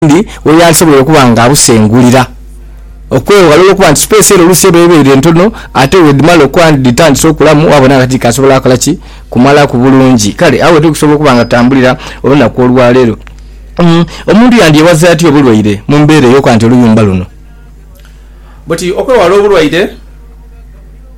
owundi we yaasobola okuba nga abusengulira, okweghalala okuba nti sipeesi ere oluusi eba ebaire ntono ate bwedhimala okuba nti dhitandise okulamu waabona nga tidhikyasobola kola ki? Kumalaku bulungi. Kale agho wetuli kusobola okuba nga tutambulira olunaku olwaleero. Omuntu yandyewazaatia obulwaire mu mbeera ey'okuba nti oluyumba luno. Buti okwewala obulwaire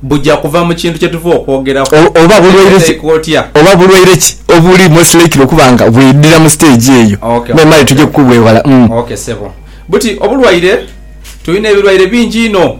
buja kuva mu kintu kye tuva okwogeraku. Oba bulwaire ki oba bulwaire ki obuli most likely okuba nga bwidhira mu stage eyo, me male tuje kukubwewala. Umm. Ok ssebo. Buti obulwaire tulina ebirwaire bingi inho.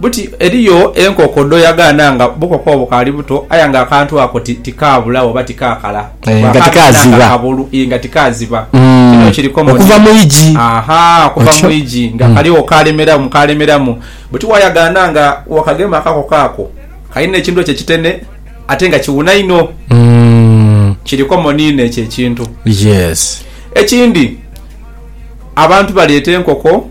Buti eriyo enkoko dh'oyagaana nga bukoko obwo bukaali buto aye nga akantu ako tikaabulagho oba tikaakala, bwakaaziba nga kabulu, nga tikaziba. Kino kiri komoni. Okuva mu igi. Aha, okuva mu igi. Nga kaligho kaalemeramu, kaalemeramu. Buti waayagaana nga wakagema akakoko ako, kalina ekintu ekyo ekitene ate nga kiwuna inho. Kiri komoni inho ekyo ekintu. Ekindi, abantu baleeta enkoko.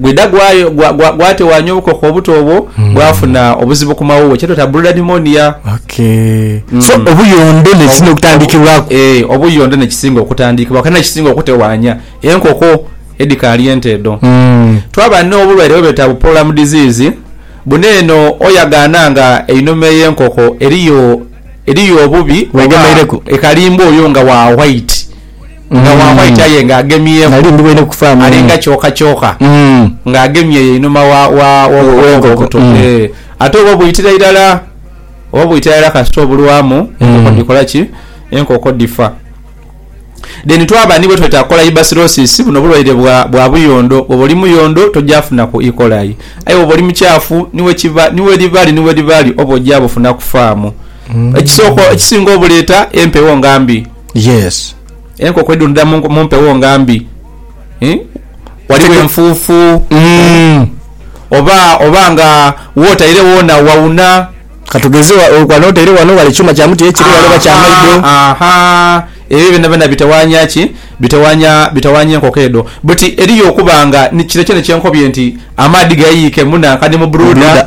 Gwidha gwatewaanya obukoko obuto obwo, hmm. bwafuna obuzibu ku mawuwe, kyetweta broda pneumonia. Hmm. So obuyondo nekisinga okutandikibwaku? Eh, obuyondo nekisinga okutandikibwaku era nekisinga okutewaanya enkoko edhikaali ente edho. Hmm. Twaba n'obulwaire bwebeta bu pollam disease, buno eno oyagaana nga einhuma ey'enkoko eriyo eriyo obubi, ekalimbwa oyo nga wa white. Nga waamweta aye nga agemyeku, alinga kyokakyoka nga agemye eyo einhuma w'obukokobe obuto. Ate oba obwitira irala, oba bwitira irala kasita obulwamu, enkoko dhikola ki? Enkoko dhifa. Then twaba ni bwe tweta Colaibacillosis, buno bulwaire bwa buyondo. Bwoba oli muyondo toja funaku E. coli. Aye bwoba oli mukyafu, ni wekiba, ni welibaali, ni welibaali, oba oja bufunaku faamu. Ekisooka, ekisinga obuleeta, empewo nga mbi. Yes enkoko edhundhira mumpewo nga mbi ghaligho enfufu oba nga wotaire wona wauna katugeze wano otaire wano ghale kyuma kya muti ekiri ghale oba kyamaido ebyo byona byona bitawanya ki bitawanya enkoko edho but eriyo okuba nga kino kyona kyenkobye nti amaadhi gayiyike munanka ni mu brooder.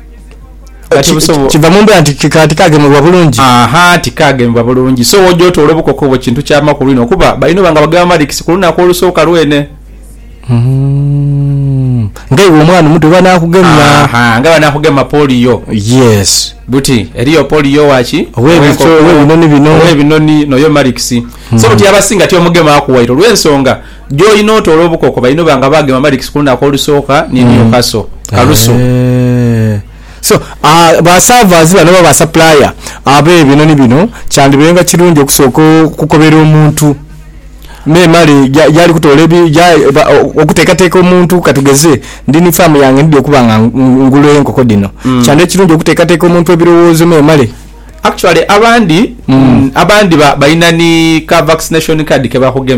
Kati busobo- kiva mu mbeera nti ki- ka- tikaagemebwa bulungi. Aha, tikaagemebwa bulungi. So oja otoole obukokobo kintu kya makulu inho kuba balina oba nga bagamba nti si ku lunaku olusooka lwene. Mm. Nga iwe omwana omuto bwebanaakugema. Aha, nga banaakugema poliyo. Yes. Buti eriyo poliyo owa ki? Ow'ebico, Ow'enkoko, ow'ebinoni bino. Ow'ebinoni, n'oyo marikisi. So buti abasinga tibamugemaaku waire olw'ensonga Gy'olina otoola obukoko balina oba nga baagema amadhikisi ku lunaku olusooka ni Newcastle, Kalusu. So, basaavazi bano oba basapulaaya ab'ebinhonhi bino kyandibainga kirungi okusooka okukobera omuntu memale gyali kutoola okuteekateeka omuntu ka tugeze ndi ni faamu yange ndidhi okuba nga ngula enkoko dhino, kyandiba kirungi okuteekateeka omuntu ebirowoozo memale. Actually abandhi, abandhi balina ni ka vaccination card ke bakugemya.